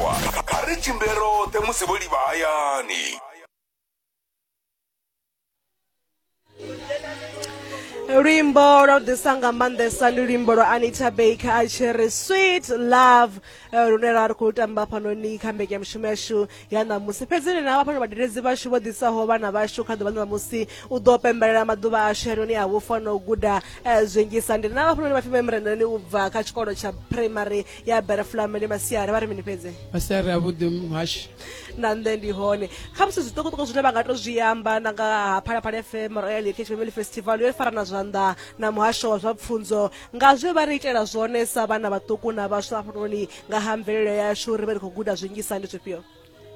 vhafhiwa. Kha ri tshimbile roṱhe musi vho livha hayani. luimbo lwa u ḓisa nga maanḓesa ndi luimbo lwa anita baker a tshi ri sweet love eh, lune ra ri khou tamba fhanoni kha mbekanyamushumo yashu ya ṋamusi fhedzi ni na vhafhano vhadeledzi vhashu vho ḓisaho vhana vhashu kha ḓuvha ṋamusi u ḓo pembelela maḓuvha ashu yanoni a vhufa na u guda eh, zwinzhisa ndi na vhafhanoni vhapfi memrenani u bva kha tshikolo tsha primary ya bera fulamele masiari vha ri mini fhedze masiari a vhuḓi muhashi na nṋe ndi hone kha musi zwiṱukuṱuku zwine vha nga to zwi amba na nga ha phalaphala fm royal heritage family festival yo fara na zwanḓa na muhasho wa zwa pfunzo nga zwe vha ri itela zwone sa vhana vhaṱuku na vhaswa hafhanoni nga ha mvelelo yashu uri vhe ri khou guda zwinzhisa ndi zwifhio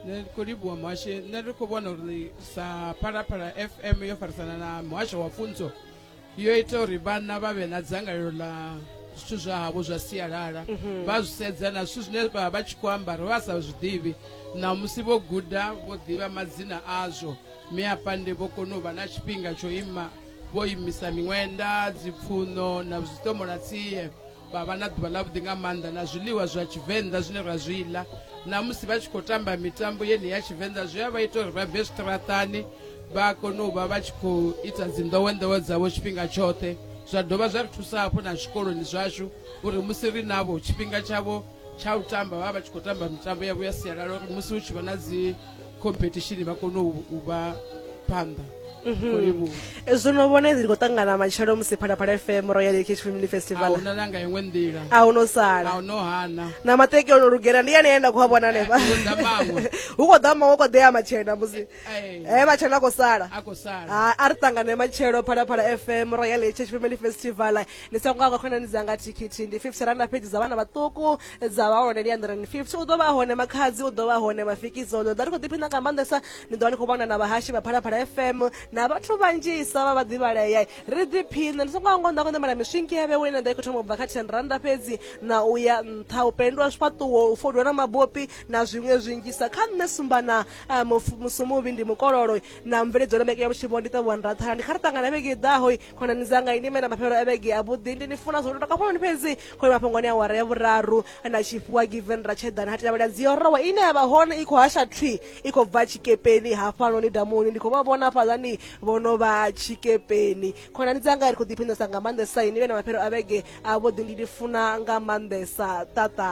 nṋe ndi khou livhuwa muhashe nṋe ndi khou vhona uri sa phalaphala fm yo farisana na muhasho wa pfunzo yo ita uri vhanna vha vhe na dzangalelo ḽa zwithu zwa havho zwa sialala mhm. vha zwi sedza na zwithu zwine vha vha tshi khou ambara vha sa zwi ḓivhi na musi vho guda vho ḓivha madzina azwo mi afha ndi vho kona u vha na tshifhinga tsho ima vho imisa miṅwenda dzipfuno na zwiṱomolatsie vha vha na ḓuvha ḽavhuḓi nga maanḓa na zwiḽiwa zwa tshivenḓa zwine ra zwi ḽa na musi vha tshi khou tamba mitambo yene ya tshivenḓa zwi a vha ita uri vha bve zwiṱaraṱani vha kone u vha vha tshi khou ita dzinḓowenḓowe dzavho tshifhinga tshoṱhe zwa dovha zwa ri thusa hafhu na zwikoloni zwashu uri musi ri navho tshifhinga tshavho tsha u tamba vha vha vha tshi khou tamba mitambo yavho ya sialala uri musi hu tshi vha na dzi competition vha kone u u vha phanḓa zwo no vhona izi ndi khou ṱangana matshelo musi phalaphala fm royal ekh family festival ahuna nanga iṅwe nḓila a hu no sala a u no hana na mateki o no lugela ndi yane ye nda khou a vhona hanefha Nda maṅwe. hu khou ḓa maṅwe hu khou ḓea matshena musi Hey. Eh, matshelo a khou sala a khou sala Ah, a ri ṱangane matshelo phalaphala fm royal heritage family festival ni songo hangwa khonani dzanga thikhithi ndi 50 randa pheji dza vhana vhaṱuku dza vha hone ndi 150 u ḓo vha hone makhadzi u ḓo vha hone mafikizo ndo ḓa ri khou ḓiphina nga maanḓesa ni ḓo vha ni khou vhona na vhahashi vha phalaphala fm na vhathu vhanzhisa vha vhaḓivhalea ri ḓiphina ni songo hangwa nda khou ṋamela miswinki ya vhewe ine nda i khou thoma u bva kha 10 randa fhedzi na u ya nṱha u pendwa zwifhaṱuwo u fodwa na mabopi na zwiṅwe zwinzhisa kha nṋe sumbana a mufu musumuvhi ndi mukololo na mveledzo na vhege ya vhutshivho ndi ṱavhiwa ndatha ndi kha ri ṱangana vhege iḓaho khonani dzanga ini mena mafhelo a vhege a vhuḓi ndi ni funa zwo ndo takafhoni fhedzi khole mafhungoni a wara ya vhuraru na tshifhiwa given ra tshedana ha tilavhela dziyorowa ine ya vha hone i khou hasha thwi i khou bva tshikepeni hafhanoni damuni ndi khou vha vhona fhaḽani vho no vha tshikepeni khonani dzanga ri khou ḓiphinesa nga maanḓesa ini vhena mafhelo a vhege a vhuḓi ndi ni funa nga maanḓesa ṱaṱa